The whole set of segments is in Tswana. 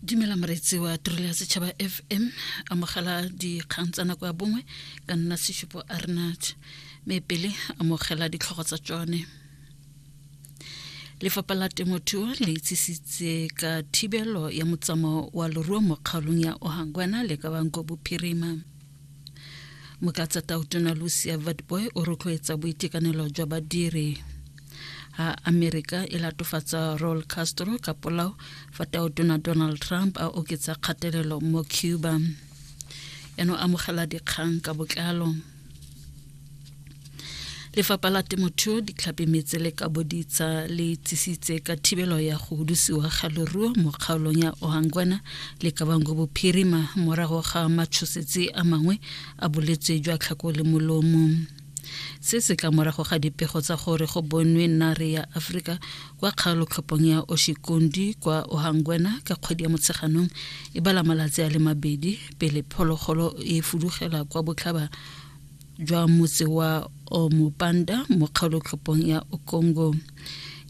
dumela moreetsi wa tirelo ya setšhaba fm amogela dikgang tsa nako ya bongwe ka nna seshupo arnat mme pele amogela ditlhogo tsa tsone lefapha la temothuo le itsisitse ka thibelo ya motsamao wa leruo mo kgaolong ya ohangwana le ka banko bophirima mokatsa tautona lucia vatboy o rotloetsa boitekanelo jwa badiri ha amerika e latofatsa rol castro ka polao fa tautona donald trump a oketsa kgatelelo mo cuba eno amogela dikgang ka botlalo lefapha la temothuo ditlhapi metse le ka boditsa le tsisitse ka thibelo ya go hudusiwa ga leruo mo kgaolong ya ohangwana le kabango bophirima morago ga matshosetsi a mangwe a boletse jwa tlhako le molomo se se tla morago ga dipego tsa gore go bonwe nare ya aforika kwa kgaolotlhophong ya oshikondi kwa ohangwena ka kgwedi ya motsheganong e bala malatsi a le mabedi pele phologolo e fudugela kwa botlhaba jwa motse wa omopanda mo kgaolotlhopong ya okongo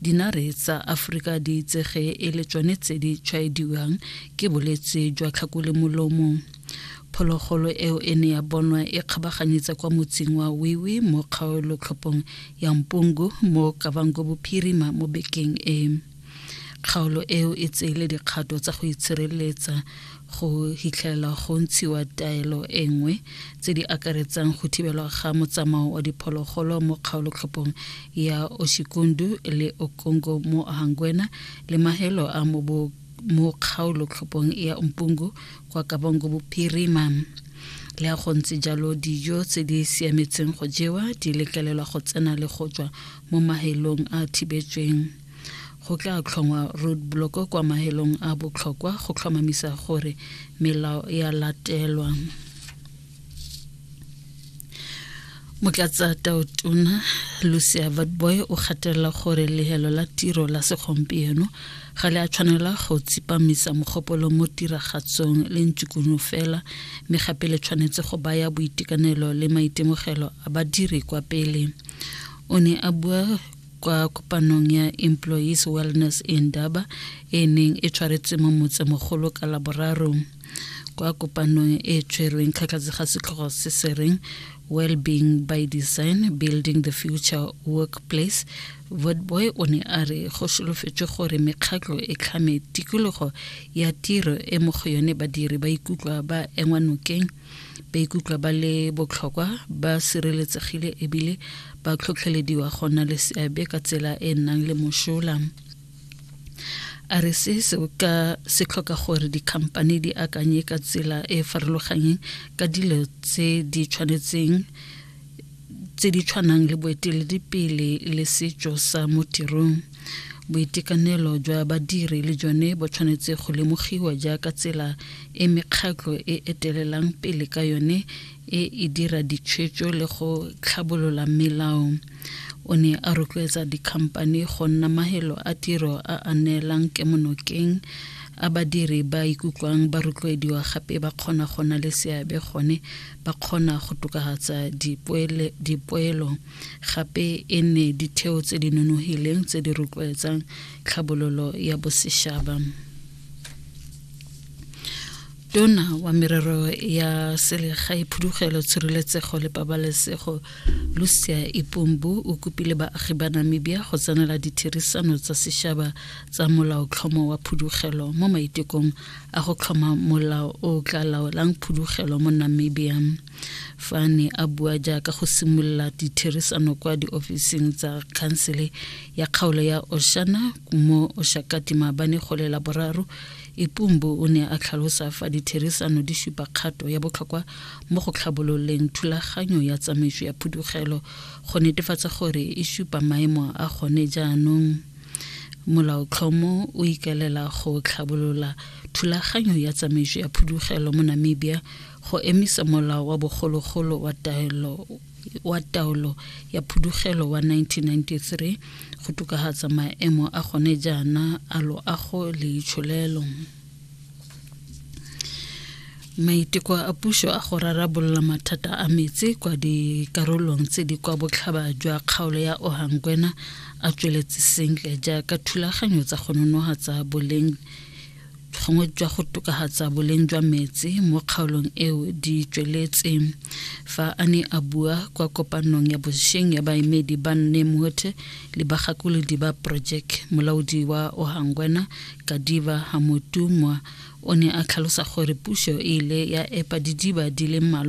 dinare tsa aforika di itsege e le tsone tse di tshwaediwang ke bolwetse jwa tlhakole molomo phologolo eo e ne ya bonwa e kgabaganyetsa kwa motseng wa wiwi mo kgaolotlhopong ya mpungu mo kavango bophirima mo bekeng e Kgaolo eo e tseile dikgato tsa go itshireletsa go hitlhelela go ntshiwa taelo e nngwe tse di akaretsang go thibelwa ga motsamao wa diphologolo mo kgaolotlhophong ya Oshikundu le Okongo mo Hangwena le mahelo a mobo mo kgaolotlhophong ya Mpungu kwa Kabongo Bophirima. Le a go ntse jalo dijo tse di siametseng go jewa di letlelelwa go tsena le go tswa mo mahelong a thibetsweng. Go tla tlhongwa roadblock kwa mahelong a botlhokwa go tlhomamisa gore melao ya latelwa. motlatsa taotona lucia vatboy o gatelela gore lehelo la tiro la segompieno ga le a tshwanela go tsepamisa mogopolo mo tiragatsong le ntsukunu fela mme gape le tshwanetse go baya boitekanelo le maitemogelo a badiri kwa pele o ne a bua kwa kopanong ya Employees Wellness Indaba e neng e tshwaretswe mo motsemogolo ka laboraro kwa kopanong e tshwerweng kgatlhatse ga setlhogo se se reng well-being by design building the future workplace vodboy o ne a re go solofetswe gore mekgatlho e tlhame tikologo ya tiro e mo go yone badiri ba ikutlwa ba engwa nokeng ba ikutlwa ba le botlhokwa ba sireletsegile ebile ba tlhotlhelediwa go nna le seabe ka tsela e e nnang le mosola a re se se ka se tlhoka gore dikhamphane di akanye ka tsela e e farologanyeng ka dilo tse di tshwanetseng tse di tshwanang le boeteledipele le setso sa mo tirong boitekanelo jwa badiri le jone bo tshwanetse go lemogiwa jaaka tsela e mekgatlho e etelelang pele ka yone e e dira ditshwetso le go tlhabolola melao o ne a rotloetsa dikhamphane go nna mahelo a tiro a a neelang kemonokeng a badiri ba ikutlwang ba rotloediwa gape ba kgona go na le seabe gone ba kgona go tokafatsa dipoelo gape e nne ditheo tse di nonogileng tse di rotloetsang tlhabololo ya bosešaba tona wa merero ya selegae phudugelo tshireletsego le pabalesego lucia ipombu o kopile baagi ba namibia go tsenela ditherisano tsa sešaba tsa molaotlhomo wa phudugelo mo maitekong a go tlhoma molao o tla laolang phudugelo mo namibia fa ne a bua jaaka go simolola ditherisano kwa diofising tsa khansele ya kgaolo ya oshana mo oshakati maabane gole la boraro ipumbu o ne a tlhalosa fa ditherisano di supa kgato ya botlhokwa mo go tlhabololeng thulaganyo ya tsamaiso ya phudugelo go netefatsa gore e supa maemo a gone jaanong molaotlhomo o ikaelela go tlhabolola thulaganyo ya tsamaiso ya phudugelo mo namibia Go emisa molao wa bogologolo wa taelo wa taolo ya phudugelo wa 1993 go tokagatsa maemo a gone jaana a loago le itsholelo. Maiteko a puso a go rarabolola mathata a metsi kwa dikarolong tse di kwa botlhaba jwa kgaolo ya Ohangwena a tsweletse sentle jaaka thulaganyo tsa go nonogatsa boleng bokgongwe jwa go tokagatsa boleng jwa metsi mo kgaolong eo di tsweletse fa a ne a bua kwa kopanong ya bosheng ya baemedi ba nne mothe le bagakolodi ba project molaodi wa ohangwena kadiva hamotumwa o ne a tlhalosa gore puso e ile ya epa didiba di le mmalwa